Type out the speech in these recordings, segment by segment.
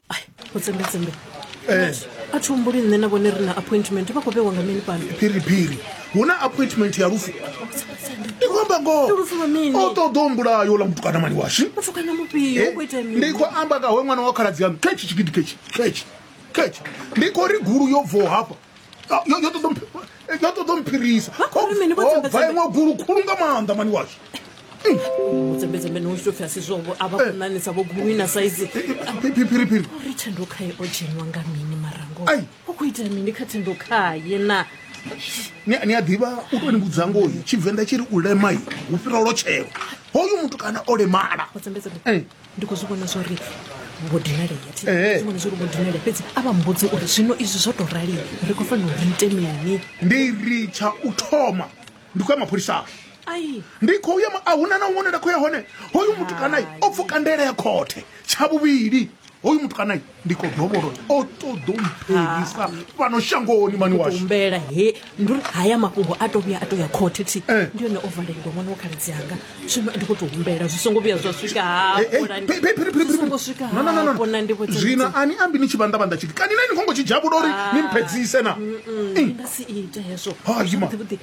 ai go tsembetsembe Eh. a thi humbuli nṋe na vhone ri na appointment vha khou vhewa nga mini fhano phiriphiri hu na appointment ya lufu ndi khou amba ngoho Ndi lufu lwa mini? o ṱoḓa u mbulaya ola mutukana mani washu mutukana mufhio u khou ita mini ndi khou amba nga hoe ṅwana wa khaladzi yanu khetshi tshigidi khetshi khetshi khetshi ndi khou ri gulu yo bvaho hafha Ah, yo yo ṱoḓa mphi- eh, yo ṱoḓa mphirisa Vha khou ri mini vho dzembe bva iṅwe gulu khulu nga maanḓa mani washu dzembedzembe ni usho pfhi a si zwovo a vha kunanisa vho gumwi na saizi phiriphiri ri thendo khaye o dzheniwa nga mini marango Ai. u khou itela mini kha thendo khaye na ni ni a ḓivha u tou ni vhudza ngoyi tshivenḓa tshi ri u lemai hu fhira lotshelo hoyu muthu kana o lemala vho dzembedzembe Eh. ndi khou zwi vhona zwori vho dinalea thi zwi vhona zwori vho dinalea fhedzi a vha mbudzi uri zwino izwi zwo tou rali ri khou fanela uri ite mini ndi ri tsha u thoma ndi khou ya mapholisani ai ndi khou ya ma- a huna na huṅwe nda khou ya hone hoyu mutukanayi o pfuka ndaela ya khothe tsha vhuvhili hoyu mutukanayi ndi khou dovholo o ṱoḓo mphelisa ah. fhano shangoni mani washumbela he ndi uri haya mafhungo a to vhuya a to ya khothe thi eh. ndi yone o valelwa ṅwana wa khaladzi anga zwino ndi khou tou humbela zwi songo vhuya zwa swika hafhona ndi zwino ani ambi ni tshi vhanḓa vhanḓa tshiti kani na ni khongo tshi dzhavhula uri ah. ni mphedzise na nga si ita hezwo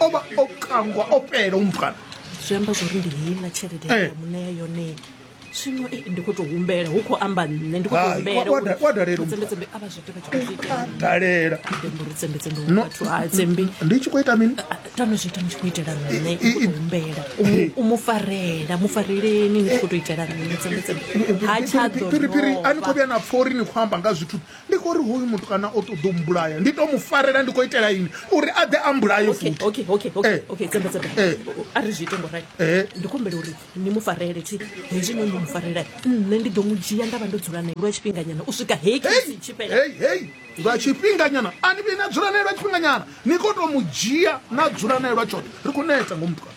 o vha o kangwa o pela umukana zwi amba zwori ndi heiḽa tshelede eh. ya muṋea yone zwino eh, ndi kho to humbela hu khou amba nṋe ndi khotohumbeladalela ndi tshi khou ita mini ah, ah, tano zwi ita ni tshi khou itela nṋe humbela u mu farela mu fareleni ni tshi khou to itela nṋe tsembetsembe ha tshadophiri a ni khou vhuya na pfori ni khou amba nga zwithu Ndi khou ri hoyu mutukana o ṱoḓa u mbulaya, ndi tou mu farela ndi khou itela ini? Uri a ḓe a mbulaye futhi. Okay, okay, okay, okay, okay, Tsemba, Tsemba. Eh. A ri zwi ite ngo rali. Eh. Ndi kumbela uri ni mu farele thi hezwi no ni mu farela. Nṋe ndi ḓo mu dzhia nda vha ndo dzula nae lwa tshifhinganyana u swika heyi khetsi tshi fhela. Hey, hey, lwa tshifhinganyana a ni vhi na dzula nae lwa tshifhinganyana ni khou tou mu dzhia na dzula nae lwa tshoṱhe ri khou neta ngo mutukana